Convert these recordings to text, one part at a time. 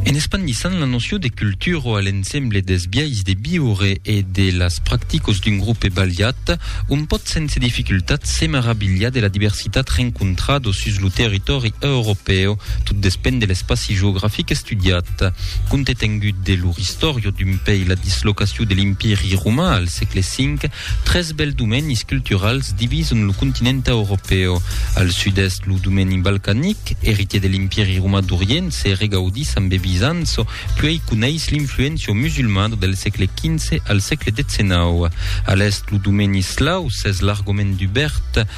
En espandissant la nocion de cultura a l'ensemble dels biais de viure e de las practicas d'un grupe balhat, on pòt sense dificultat se meravilhar de la diversitat rencontrada sus lo territòri europèu, tot despend de l'espaci geografic estudiat. Compte tengut de lor istòria d'un pei la dislocacion de l'Empiri roman al sègle V, Tres bèls domenis culturals divison lo continent europèu. Al sud-èst, lo domeni balcanic, eritier de l'Impèri romà d'Orient, se regaudís amb e Bizanço, puèi coneis l'influéncia musulmada del sègle XV al sègle XIX. A l'èst, lo domeni eslau s'es largament dubèrt,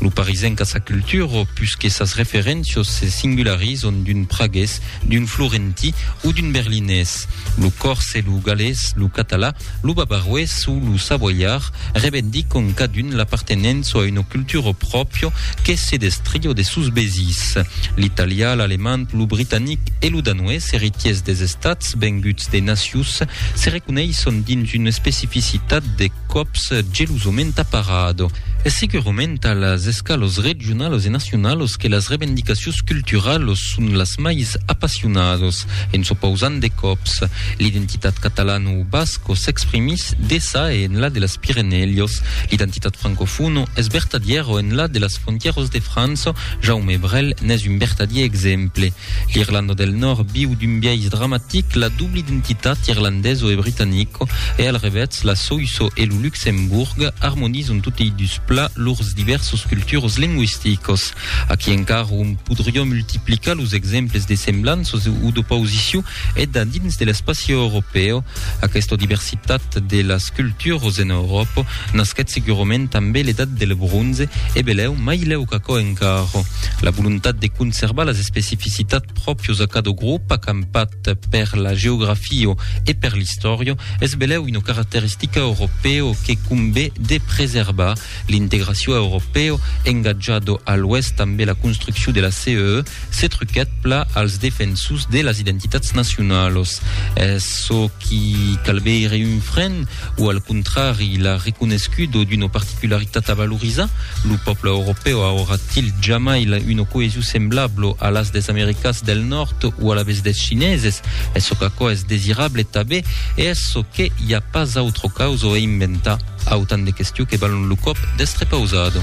Lo parisenc a sa cultura o pus que sas referéncias se singularizan d'un pragués, d'un florentí o d'un berlinés. Lo còrse, lo galés, lo català, lo bavaroés o lo savoiard revendican cadun l'apartenença a una cultura pròpria que se destria de sos vesins. L'italià, l'alemand, lo britanic e lo danoés, eritiers des estats venguts de nacius, se reconeissan dins una especificitat de còps gelosament aparado. Es segurament a las escalos regionalos e nacionalos que las revendicacions culturalos son las mais apassionados. En s'opausant de còps, l'identitat catalana o basco s'exprimís deçà e enlà de las Pirenèlios. L'identitat francofono es vertadièro enlà de las frontièros de França Jaume Brel n'es un vertadier exemple. L'Irlanda del Nòrd viu d'un biais dramatic la doble identitat irlandeso e britanico e al revètz la Soïso e lo Luxemborg armonizan totei dus plats lors divèrsos culturos lingüisticos. Aquí encara òm podrion multiplicar los exemples de semblanças o d'opausicion E da dins de l'espaci europèu, aquesta diversitat de las culturas en Euròpa nasquèt segurament tanben l'edat del bronze e belèu mai lèu qu'aquò encara. La volontat de conservar las especificitats pròpias a cada grop acampat per la geografia e per l'istòria es belèu una caracteristica europèu que convé de preservar L'integraciò europèo engatja do a l'oèst tanbe la construcciò de la CEE se truquèt pla als defensors de las identitats nacionalos. Es çò qui calbèire un fren o al contrari la reconescudo d'una particularitat a valorizar? Lo pòble europèo aurà-t-il jamai una coesio semblablo a las des americas del nòrd o a la vez des chineses? Es çò qu'aquò es desirable? Tabé E es çò que i a pas autre causa o e inventar, autant de questiu que valon lo còp d'estre pausado.